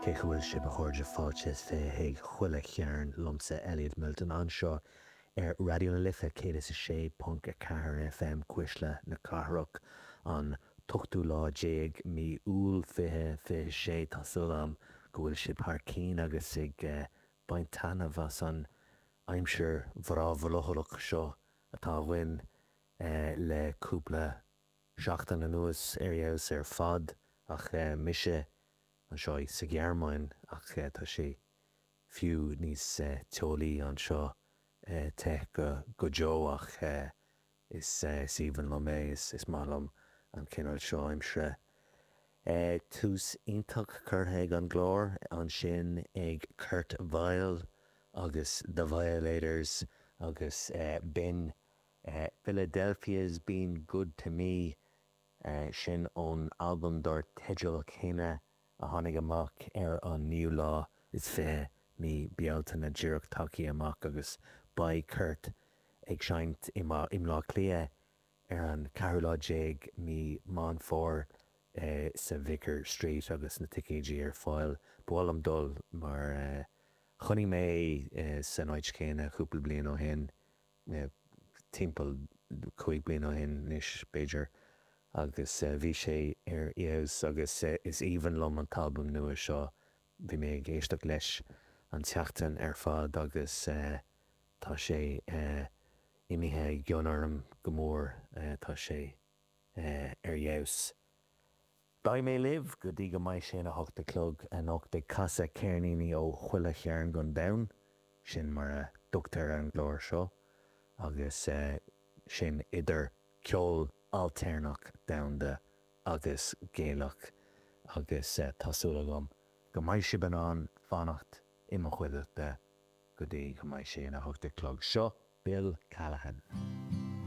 Cén chaoi a bhfuil sibh a chairde fáilte is fiche chuig Chuile Chearn liomsa Elliot Milton anseo ar Raidió na Life 106.4 FM Cuisle na Cathrach an t-ochtú lá déag mí Iúil 2026 tá súil agam go bhfuil sibh thar cinn agus ag baint taitneamh as an aimsir bhreá bhrothallach seo atá againn le cúpla seachtain anuas ar fheabhas ar fad ach mise anseo sa Ghearmáin ach tá sé fiú níos teolaí anseo, te go deo ach is aoibhinn liom é, is maith liom an cineál seo aimsire. Tús iontach curtha leis an gclár ansin ag Kurt Vile agus The Violators agus b'in Philadelphia's been good to me, sin ón albam dár teideal céanna a tháinig amach ar an 9ú lá is fiche mí Bealtaine díreach tagtha amach agus beidh Kurt ag seinnt i mBleá Cliath ar an ceathrú lá déag mí Meán Fómhair sa Vicar Street agus na ticéidí ar fáil. Ba mhaith liom dul mar chonaic mé é san áit chéanna cúpla bliain ó shin. timpeall cúig bliana ó shin anois, b'fhéidir, agus bhí sé ar fheabhas agus is aoibhinn liom an t-albam nua seo. Bhí mé ag éisteacht leis an tseachtain ar fad agus tá sé imithe i gcion orm go mór, tá sé ar fheabhas. Beidh mé libh go dtí go mbeidh sé ina hocht a chlog anocht ag casadh ceirníní ó chuile chearn den domhan, sin mar a thugtar ar an gclár seo, agus sin idir ceol ailtéarnach domhanda agus Gaelach, agus tá súil agam go mbeidh sibh in ann fanacht i mo chuideachta go dtí go mbeidh sé ina hocht a chlog. Seo Bill Callahan.